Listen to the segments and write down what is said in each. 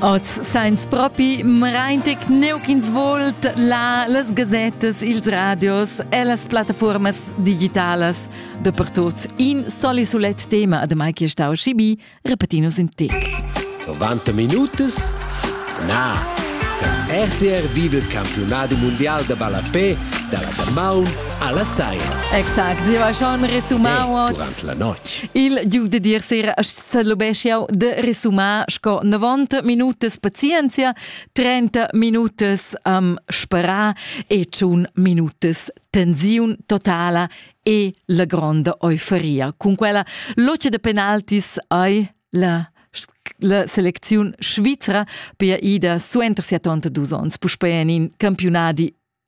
Oz sainz propi mraintic neuch'ins volt là las gazettas, ils radios e las plattafuormas digitalas. Dappertut in soli sulet tema, ademai che stau schibi, repetinus in tic. 90 minutas? Na! Der RTR vive il campionato mondial de ballapé dalla Damaun alla Saia. Exact, io ha schon resumau eh, durante la notte. Il giù de dir sera Sedlubesc jau de resumar sco 90 minutas pazienzia, 30 minutas um, spera e tschun minutas tensiun totala e la gronda euforia. Con quella loce de penaltis ai la la selecziun svizra per ida suenter 72 onns puspei en in campionati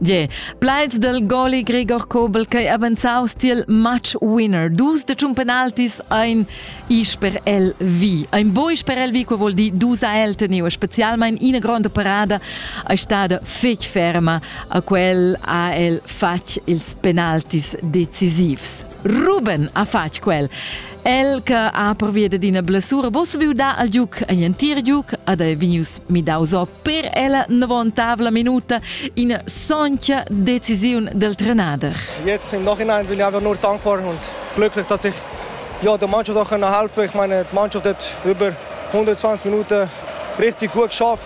Yeah. Plaids del goli Gregor Kobel che avanzaus tiel match winner. Dus de tschun penaltis ein is per el vi. Ein bois per el vi, quo vuol dir dus a el teniu, specialmein ina gronda parada è stada fec ferma a quel ha el fatg ils penaltis decisivs. Ruben ha fatg quel. El che ha pervia ad ina blessura boss viu dar al giuc agl entir giuc ad ei vegnius midaus o per ella novontavla minuta ina soncia decisiun del trenader. Jetzt im Nachhinein bin ich einfach nur dankbar und glücklich, dass ich ja, der Mannschaft auch helfen konnte. Ich meine, die Mannschaft hat über 120 Minuten richtig gut geschafft,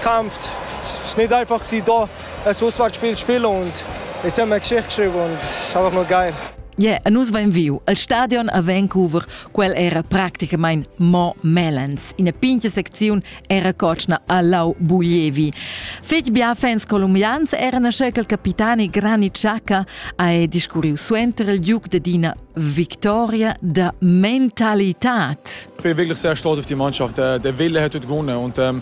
gekämpft. Es war nicht einfach, da Es uss fatg pil spiel und jetzt haben wir Geschichte geschrieben und einfach nur geil. Yeah, e nus vein viu al stadion a Vancouver, quel era practicamain mo Melens. Ina pincha secziun era cotschna a Lau Bulievi. Fetg bia fans colombians erano scelti il capitani Granit Xhaka e discurriu suenter il duc de Dina Victoria da Mentalität. Ich bin wirklich sehr stolz auf die Mannschaft. Der, der Wille hat heute gewonnen und ähm,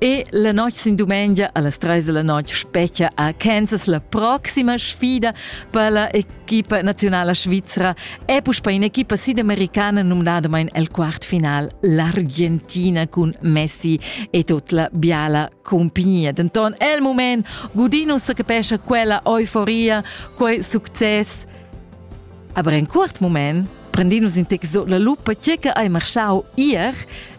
E la notg sin dumengia allas treis della notg spetga a Kansas la proxima sfida per la equipa nazionala svizra e puspei un'equipa sidamericana numnadamein el quartfinal l'Argentina cun Messi e tut la biala compagnia. Denton el moment Gudino se capescha quella euforia, quei success. Aber in quart moment prendinus in tec sot la lupa tge che hai marschau ier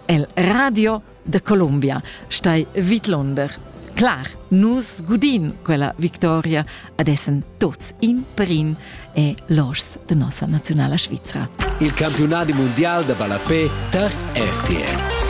el radio da Colombia stai vidlonder. Clar, nus gudin quella victoria adessen tots in per in e los de nossa nazionala Svizzera. Il campionat mundial da ballapé tar RTL.